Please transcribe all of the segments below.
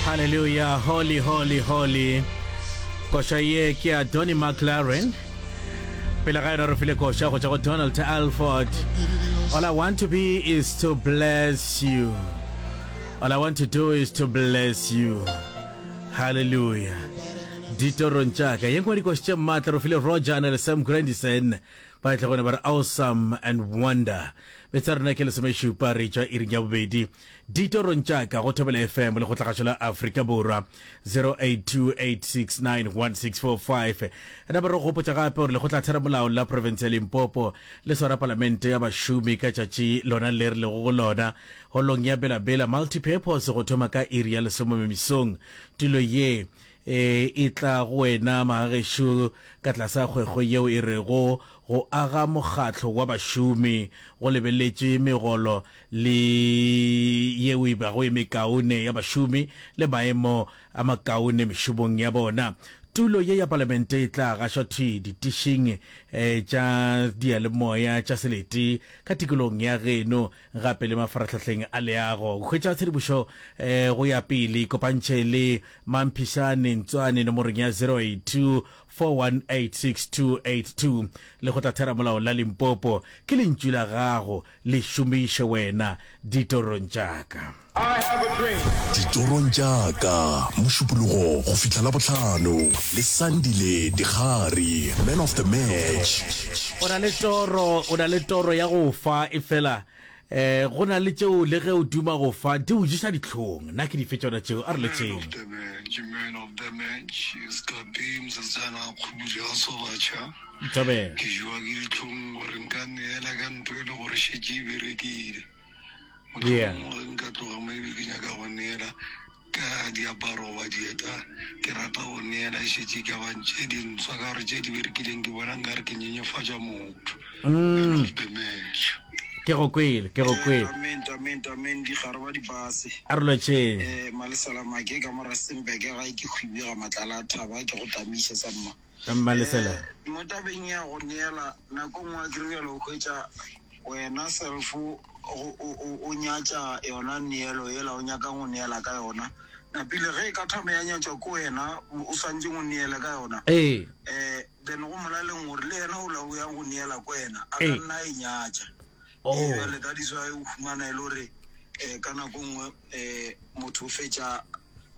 Hallelujah, holy, holy, holy. Koša ye ke ya Donny McLaren. Pele ga yona re file koša go tšwa go Donald Alford. All I want to be is to bless you. All I want to do is to bless you. Hallelujah. ditorong tša ka ye nngwe dikoši tše maatla re file roger na le sam grandison ba tle gone ba re awesome and wonder betsa rena ke lesomešupa re tšwa iring ya bobedi Ditorong tša ka go Thobela FM le Kgotlagašo la Afrika Borwa 0828691645. Napa re go gopotša gape gore Lekgotla Theramolao la Profense ya Limpopo le swara Palamente ya Bašomi ka tšatši lona le re lego go lona holong ya Bela Bela Multipurpose go thoma ka iri ya lesomome mesong. Tulo ye e e tla go wena magagešo ka tlasa kgwekgwe yeo e rego Go aga mokgatlo wa bašomi go lebeletše megolo le yeo e bago e mekaone ya bašomi le maemo a makaone mešomong ya bona. Tulo ye ya palamente e tla gašwa thwi ditišing tša diyalemoya tša selete ka tikolong ya geno gape le mafarahlahleng a leago. Hwetša tshedimošo go ya pele ikopantšhe le Mampishane Ntswane nomorong ya 0824186282. Lekgotlatheramolao la Limpopo ke lentšu la gago le šomiše wena ditorong tša ka. Ditorong tša ka, Mošupologo go fihla Labohlano, le Sandile Dikgari, Man of the Match. O na le toro, o na le toro ya go fa, efela eh, go na le tšeo le ge o duma go fa, di go ješa dihlong. Na ke dife tšona tšeo? A re letšeng. Ntobela. Ke jewa ke dihlong gore nka neela ka ntho e le gore šetše e berekile. Mohlomongwe ge nka tloga mo ebe ke nyaka go neela ka diaparo goba dieta, ke rata go neela e šetše e ka ba tše dintswa ka gore tše di berekileng ke bona nkare ke nyenyefatša motho. Hello, ke Dementia. Ke go kwele, ke go kwele. Amen, amen, amen, dikgare ba dipase. A re lotšheng. Malesalamake ka mo Rustenburg gae ke Kgwibega Matlala a Thaba ke go tamiša sa mma. mmalefela eh, mo tabeng ya go neela nako nngwe a kiribjalo o hwetša wena selfo o nyatša yona neelo ela o nyakang go neela ka yona napile ge e ka thome ya nyatšwa ko wena o swantse go neele ka yona ee um then go molaleng gore le yena o lao yang go neela ko wena a ka ee. nna e nyatša eale oh. ka diswa e o fumana e le gore um ka nako nngwe um motho o fetša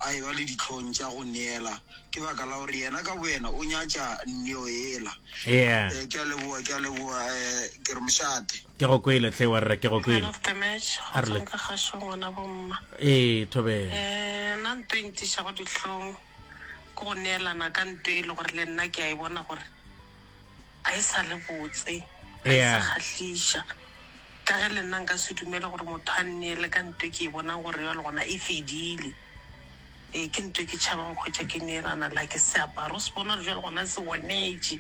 a ewa le dihlong tša go neela, ke baka la gore yena ka boyena o nyatša neo yela. Eya. Eh, ke a leboa, ke a leboa, eh, ke re mošate. Ke go kwele hle wa rra, ke go kwele. Man of the match, go tswang ka kgašong ngwana bomma. Ee, thobela. Eh, nna nto e ntišago dihlong ke go neelana ka nto e le gore le nna ke a e bona gore, Ga e sa le botse, ga e sa kgahliša. Ka ge le nna nka se dumele gore motho a nneele ka nto e ke e bonang gore bjale gona e fedile. Ee, ke nto e ke tšhabang go hwetša ke neelana le ha ke se apara. O se bone gore bjale gona se onetše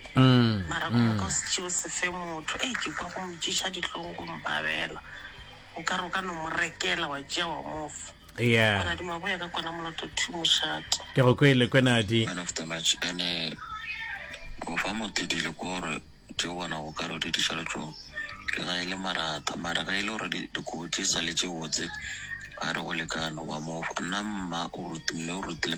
mara gore o ka se tšee o se fe motho. Hei, ke kwa go mpšeša dihlong go mpabela. Nkare o ka no mo rekela wa tšea wa mo fa. Yeah. Monadi maboya ka kwana moloto two mošate. Ke go kwele kwenadi. Man of the match ene go fa motedile kore tse bona go ka re di diša letšong le ga e le marata mara ga e le gore dikobo tse sa le tse botse a re go lekano ba mo nna mma o rutile o rutile